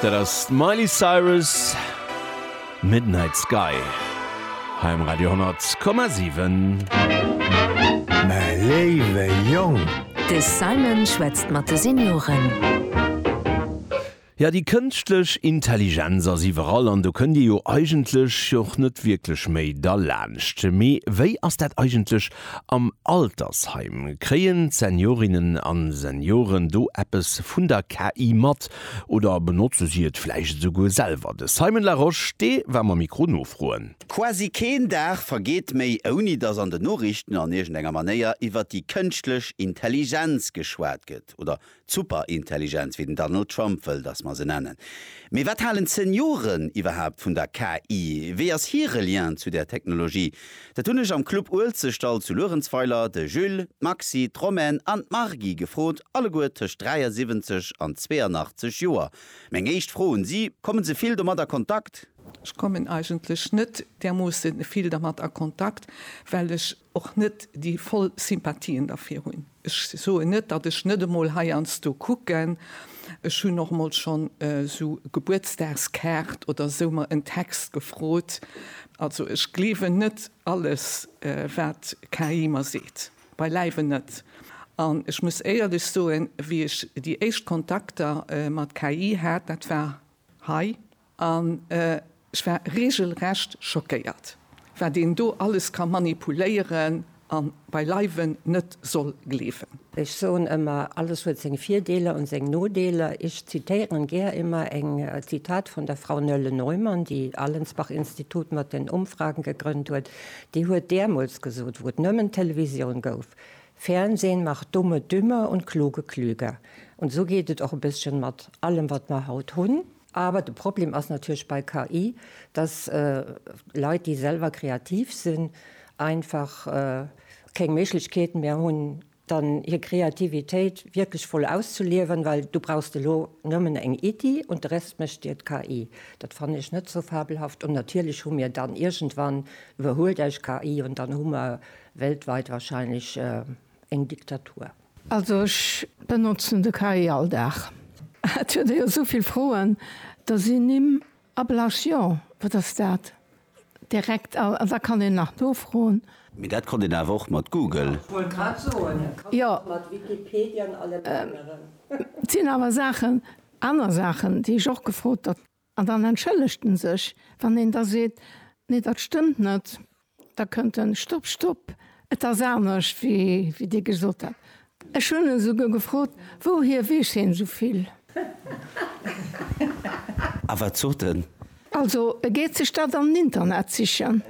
Dat ass d'Miley Cyrus, Midnight Sky hei um Radio 10,7. Mä léiwe Jong! De Simon schwätzt mat de Senioren. Jo, déi kënschtlech Intelligenz ass iwwerall an do kënnt Dir jo eigentlech och net wierklech méi derlaanscht. Mee wéi ass dat eigentlech Am Altersheim, kréien d'Seniorinnen a Senioren do eppes vun der KI mat oder benotze si et vläicht esouguer selwer? De Simon Larosche, dee war mam Mikro nofroen. Quasi keen Dag vergeet méi, ouni datt an den Noriichten an iergendenger Manéier iwwer déi kënschtlech Intelligenz geschwat gëtt oder D'Superintelligenz, wéi den Donald Trump wëll, datt mer se nennen. Mee wat halen d'Senioren iwwerhaapt vun der KI? Wéi ass hire Lien zu där Technologie? Dat hunn ech am Club Uelzechtdall zu Luerenzweiler de Jules, d'Maxi, d'Romaine an d'Margy gefrot, alleguer tëscht 73 an 82 Joer. Meng éischt Fro un si, Kommen se vill domat a Kontakt? Ech kommen eigentlech net därmoosse vill dermat a Kontakt, well ech och net déi voll Sympathien derfir hunn. Ech soen net, datt ech net emol heiansdo kucken, ech hunn och emol schonn esou Gebuertsdagskaart oder esou mer en Text gefrot. Also ech gleewen net alles wat KI mer seet, beileiwen net. An ech muss éierlech soen, wéi ech déi éischt Kontakter mat KI hat, dat war hei, An ech war regelrecht schockéiert, wat een do alles ka manipuléieren a beileiwen net soll gleewen. Ech soen ëmmer, alles huet seng Virdeeler an seng Nodeeler. Ech zitéieren gär ëmmer eng Zitat vun der Frau Nölle Neumann, déi Allensbach Institut mat den Umfragen gegrënnt huet. Déi huet däermols gesot, wou et nëmmen Televisioun gouf, Fernsehen macht Dumme dümmer und Kluge klüger. Und so geet et och e bësschen mat allem wat mer haut hunn. Awer de Problem ass natierlech bei KI, dass Leit, déi selwer kreativ sinn, einfach keng Méiglechkeet méi hunn, dann hir Kreativitéit wierklech voll auszeliewen, well du brauchst elo nëmmen eng Iddi und de Rest mécht dir d'KI. Dat fannen ech net sou fabelhaft. Und natierlech hu mir dann iergendwann, iwwerhuelt eis KI und dann hu mer weltweit wahrscheinlech eng Diktatur. Also ech benotzen de KI all Dag. Et huet e jo esou vill Froen, da sinn Nimm ablasch, jo wat ass dat, direkt all, da kann een nach nofroen. Mee dat konnt een awer och mat Google. Jo, et sinn awer Saachen, aner Saachen, déi ech och gefrot. An dann entschëllegt en sech. Wann een da seet, Nee, dat stëmmt net, da kënnt en, Stopp, stopp, et ass anescht, wéi Dir gesot hat. Ech hunn en esouguer gefrot, Wouhier weess hien esou vill? A wat sot en? Also, e geet sech dat am Internet sichen.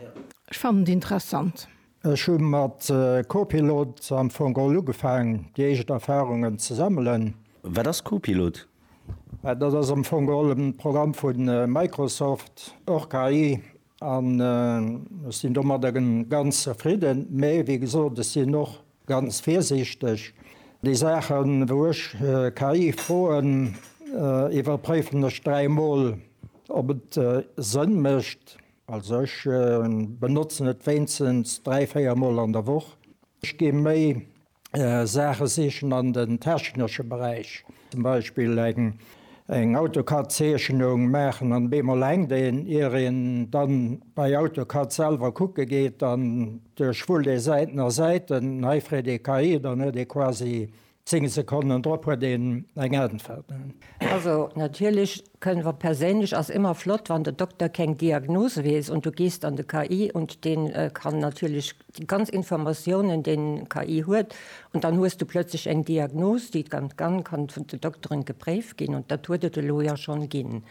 Ech fannen et interessant. Ech hu mat Copilot am Fong all ugefaang, déi éischt Erfarungen ze sammelen. Wat ass Copilot? Dat ass am Fong all e Programm vu Microsoft, och KI, an ech sinn domadder ganz zefridden. Mee wéi gesot, ech sinn och ganz virsiichteg. Déi Saachen, wou ech KI froen, iwwerpréifen ech dräi Mol, ob et Sënn mécht. Also ech benotzen et wéinstens dräi, véier Mol an der Woch. Ech gi méi Saache sichen an den technesche Beräich. Zum Beispill eng AutoCAD-Zeechnung maachen an op eemol hänkt een. Ier een dann bei AutoCAD selwer kucke geet an duerchwullt ee Säiten a Säiten, hei freet ee KI, dann huet ee quasi Zéng Sekonnen drop huet een eng Äntwert. Also natierlech kënn, wa perséinlech, ass ëmmer flott, wann de Dokter keng Diagnose weess und du gehst an de KI und deen kann natierlech déi ganz Informatiounen, deen KI huet und dann hues du plötzlech eng Diagnose, déi dann kann vun de Dokteren gepréift ginn und dat huet et elo jo schonn ginn,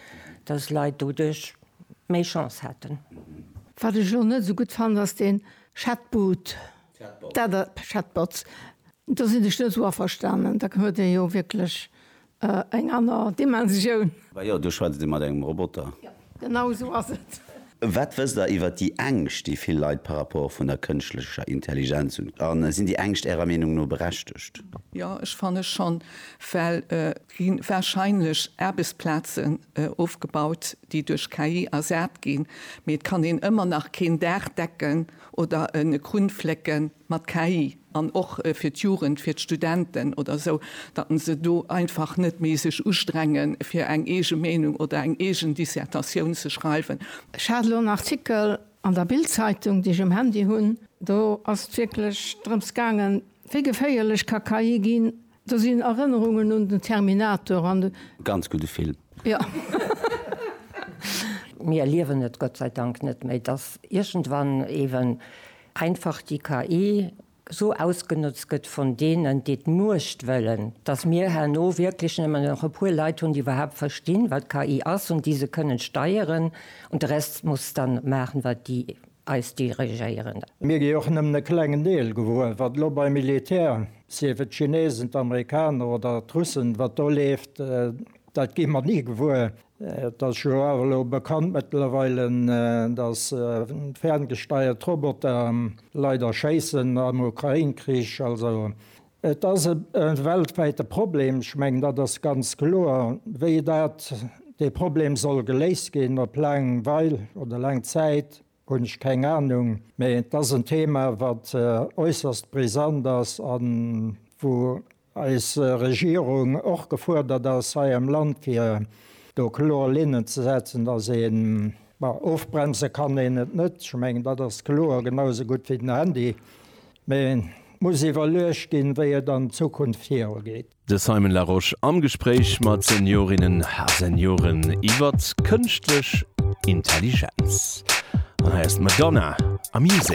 dass Leit doduerch méi Chance haten. Wat ech elo net esou gutt fannen, ass deen Chatbot. Chatbots, do sinn ech net esou averstanen, da huet ee jo wierklech eng aner Dimensioun. Bah jo, do schwätzt ee mat engem Roboter. Jo, genau esou ass et. Wat wësst Der iwwer déi Ängscht, déi vill Leit par rapport vun der kënschtlecher Intelligenz hunn? A sinn déi Ängscht Ärer Meenung no berechtegt? Jo, ech fanne schonn, well et gi warscheinlech Aarbechtsplazen ofgebaut, déi duerch KI ersat ginn, mee et kann een ëmmer nach keen Dag decken. oder e Krunflécken mat KI an och fir d'Jugend, fir d'Studenten oder esou, datt en se do einfach net méi sech ustrenge fir eng eege Meenung oder eng eegen Dissertatioun ze schreiwen. Ech hat elo en Artikel an der Bild-Zeitung, déi ech um Handy hunn, do ass et wierklech drëms gaangen, wéi geféierlech ka KI ginn, Do sinn Erënnerungen un den Terminator an de. Ganz gudde Film. Jo. Mir erliewen et Gott sei Dank net méi, dass iergendwann eeben einfach déi KI esou ausgenotzt gëtt vun deenen, déi d'Muecht wëllen, dass mir herno wierklech nëmmen nach e puer Leit hunn, déi iwwerhaapt verstinn, wat KI ass, an déi se kënnen steieren, an de Rest muss dann maachen, wat déi eis dirigéieren. Mir gi och nëmmen e klengen Deel gewuer, wat elo beim Militär, sief et d'Chinesen, d'Amerikaner oder d'Russen, wat do leeft, dat gi mer ni gewuer. Et ass jo och elo bekannt mëttlerweile, datt ferngesteiert Roboter leider schéissen am Ukrain-Krich. Also Et ass e weltwäite Problem, ech mengen, dat ass ganz kloer. Wéi dat, dee Problem soll geléist ginn op laang Weil oder laang Zäit, hunn ech keng Anung. Mee et ass en Thema, wat äusserst brisant ass a wou eis Regierung och gefuerdert ass hei am Land, fir do kloer Linnen ze setzen, dass een, bon, ofbremse kann een et net, ech mengen, dat ass kloer, genausou gutt wéi den Handy, Mä et muss iwwerluecht ginn, wéi et an Zukunft viru geet. De Simon Larosche am Gespréich mat Seniorinnen a Senioren iwwert kënschtlech Intelligenz. An hei ass d'Madonna am Musée.